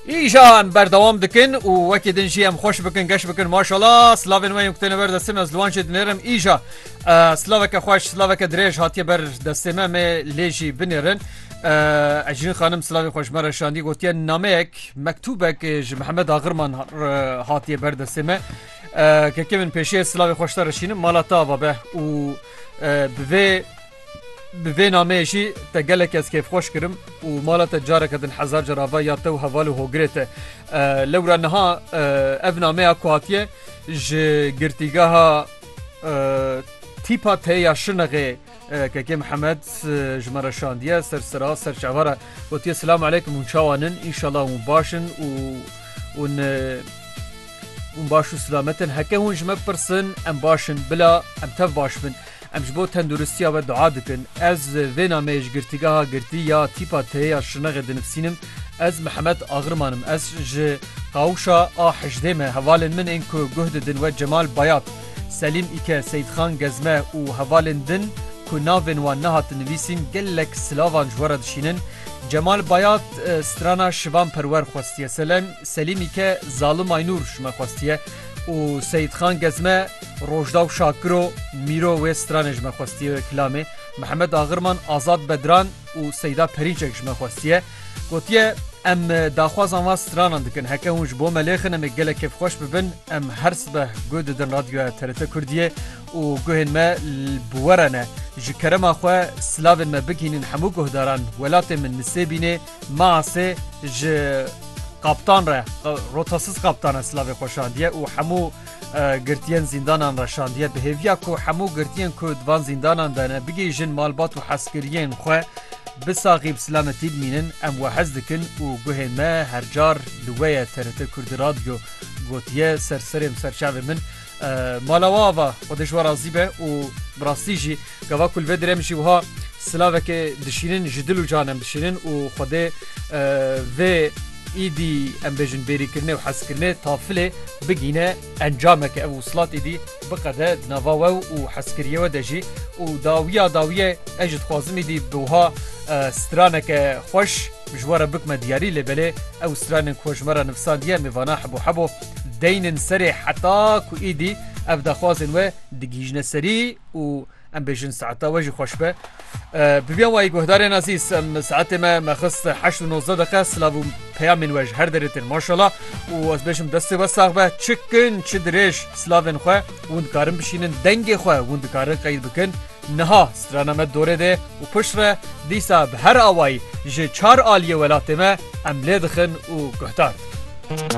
Îjan berdewam dikin û wekî din jî em xweş bikin geş bikin maşala slavên me yekutêne ber destê me ziwan jê dinêrim îja slaveke xweş slaveke dirêj hatiye ber destê me me lê jî binêrin Ecîn xanim slavê xweş me re şandî gotiye nameyek mektûbek ji Mihemed Agirman hatiye ber destê me kekê min pêşiye slavê xweşta reşînim mala ta babe û bi vê Bi vê nameyê jî te gelekî ez kêfxweş kirim û mala te careke din hezar car ava ya te û heval û hogirê te. Lewra niha ev nameya ku hatiye ji girtîgeha Tîpa T ya Şirnexê Kekê Mihemed ji me re şandiye ser sira ser çava re gotiye Silam aleykum hûn çawan in înşala hûn baş in û hûn hûn baş û silamet in heke hûn ji me bipirsin em baş in bila em tev baş bin. Em ji bo tenduristiya we dua dikin. Ez vê nameyê ji girtîgeha girtî ya tîpa T ya Şirnexê dinivsînim. Ez Mihemed Agriman im. Ez ji Qawûşa a hejdê me. Hevalên min ên ku guh didin we Cemal Bayat, Selîm Îke, Seyîdxan Gezme û hevalên din ku navên wan nehatin nivîsîn gelek silavan ji we re dişînin. Cemal Bayat strana Şivan Perwer xwestiye. Selem Selîm Îke zalim Aynûr ji me xwestiye. Û Seyîdxan Gezme, Rojdaw Şakiro, Mîro wê stranê ji me xwestiye kilamê, Mihemed Agirman, Azad Bedran û Seyda Perînçek ji me xwestiye. Gotiye, Em daxwazan van stranan dikin. Heke hûn ji bo me lêxin em ê gelek kêfxweş bibin. Em her sibeh guh didin radyoya TRT Kurdiyê û guhên me bi we re ne. Ji kerema xwe silavên me bigihînin hemû guhdaran. Welatê min nisêbînê. Maasê ji kaptan re rotasiz kaptan e silavê xwe şandiye û hemû girtiyên zîndanan re şandiye bi hêviya ku hemû girtiyên ku di van zîndanan de ne bigihîjin malbat û hezkiriyên xwe bi saxî bi selametî bimînin em we hez dikin û guhê me hercar li wê ye TRT Kurdî Radyo gotiye ser serê serçavê min Mala wa ava xwe dijwa razî be û bi rastî jî gava ku li vê direm jî wiha silavekê dişînin ji dil û can em dişînin û xwedê vê îdî em bêjin bêrîkirinê û hezkirinê tafilê bigîne encameke ev wisilat îdî biqede di nava we û hezkiriyê we de jî û dawiya dawiye ez ji dixwazim îdî bi wiha straneke xweş ji we re bikme diyarî lê belê ew stranên ku ji me re nivîsandiye mêvana hebû hebû Deynin serê heta ku îdî ev daxwazên we digihîjine serî û em bêjin saeta we jî xweş be. Bibiyan wayî guhdarên azîz em saetê me me xist heşt û nozde deqe silav û peyamên we ji her derê tên maşala û ez bêjim destê we sax be çi kin çi dirêj silavên xwe hûn dikarin bişînin dengê xwe hûn dikarin qeyd bikin niha strana me dorê dê û pişt re dîsa bi her awayî ji çar aliyê welatê me em lê dixin û guhdar dikin.